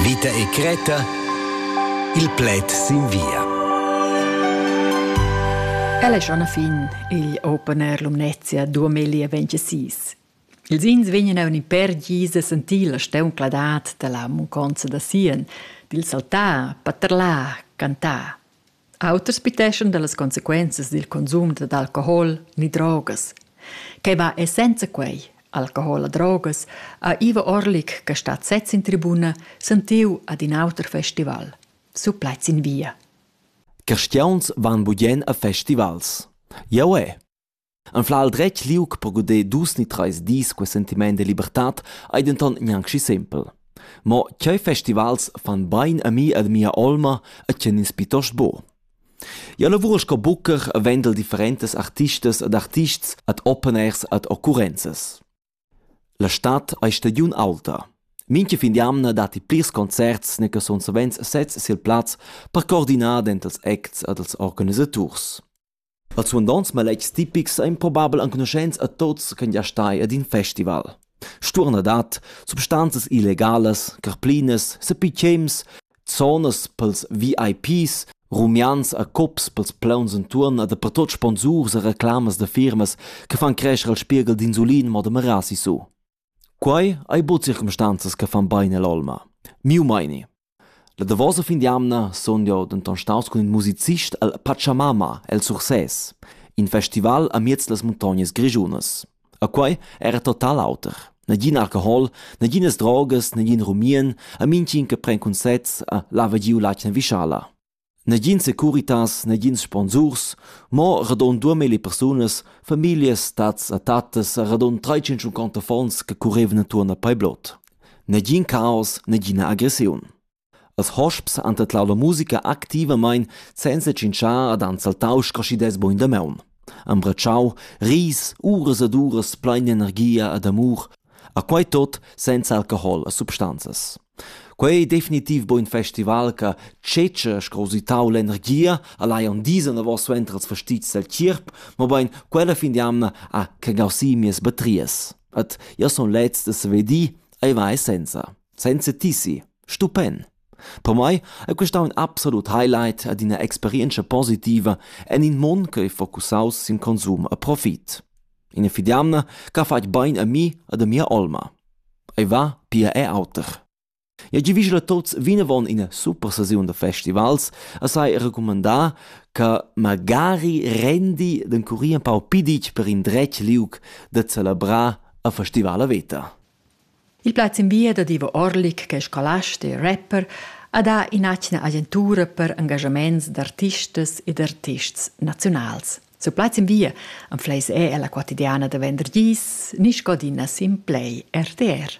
Vita e Creta Il pled sin via. El è schon a fin il Open Air Lumnezia 2026. Ils ins vegnan a un per gis a sentir la steuncladat da la munconza da Sien, dil saltar, paterlar, cantar. Auters piteschan dallas consequenzas dil consum dad alcohol ni drogas. Quei va e senza quei, alcohol e drogas, ha Ivo Orlik, che stat sez in tribuna, sentiu ad in auter festival. Su plaids in via. Cristiauns van budien a festivals. Jau è. Anfla il dretg liug per guder dus ni treis dis quei sentiment de libertad ei denton gnanc schi sempel. Mo tgei festivals fan bein a mi ed mia olma e tgien ins piuttost buc? Jeu lavur sco bucher e vendel differentas artistas ed artists ad openers ad occurrenzas. La stad ei stagiun aulta. Mincha fin d'jamna datti plirs concerts ne che sun savens sezs sil plaz per coordinar dentals acts ad els organisaturs. Als suandonts maletgs tipics ein probabel enconuschents a tuts ch'ein gia stai ad in festival. Stuornadad, substanzas illegalas, carplinas, sepitschems, zonas pils VIPs, rumians e cups pils plauns entuorn e dapertut sponsurs e reclamas da firmas che fan crescher il spieghel d'insulin mo da merar sisu. Quei ei buca circumstanzas che fan bein all'olma. Miu meini. La davosa fin d'jamna sun jeu denton staus cun in musicist el Pachamama el Sursès, in festival amiez las muntognas grischunas. E quei era total auter. Nagin alcohol, naginas drogas, nagin rumien, e mintgin che pren cunsets e lava giu l'atgna vischala. Negin securitas, negins sponsurs, mo radund duamilli persunas, famiglias, tats e tattas e radund trais-tschinschunconta affons che currevan entuorn a Paiblot. Negin caos, negina agressiun. Als hosps han tadlau la musica activamein senza tschintschar ad han saltau scraschidas bugen damaun. Han bratschau ris, uras ed uras plein energia ed amur, a quei tot senza alcohol e substanzas. Quei ei definitiv bein in festival che tschetscha sco usitau l'energia, al hajan disa davos suenter ils fastizs del tgierp, mobein quella fin d'jamna ha cagau si mias batrias. Et io sun leds da saver dir, ei vai senza, senza tissi, stupend. Per mai è questa un absolut highlight ad ina experienza positiva en in mund che è focusaus sin konsum e profit. Ina fidamna ch'ha fatg bain a mi ed a mia olma. Ei va pia er auter. Eu giavüschel a tuots vinavon ina super sesiun da festivals e sai recumandar che magari rendi d'encurir empau piditg per indretg liug da celebrar a festivala veta. Il plaz in via dad Ivo Orlik, che è scolast e rapper, ha dà in'atgna agentura per engagiaments d'artistas e d'artists naziunals. Su plaz in via am fleis è la quotidiana da vendergis, ni scodina sin play RTR.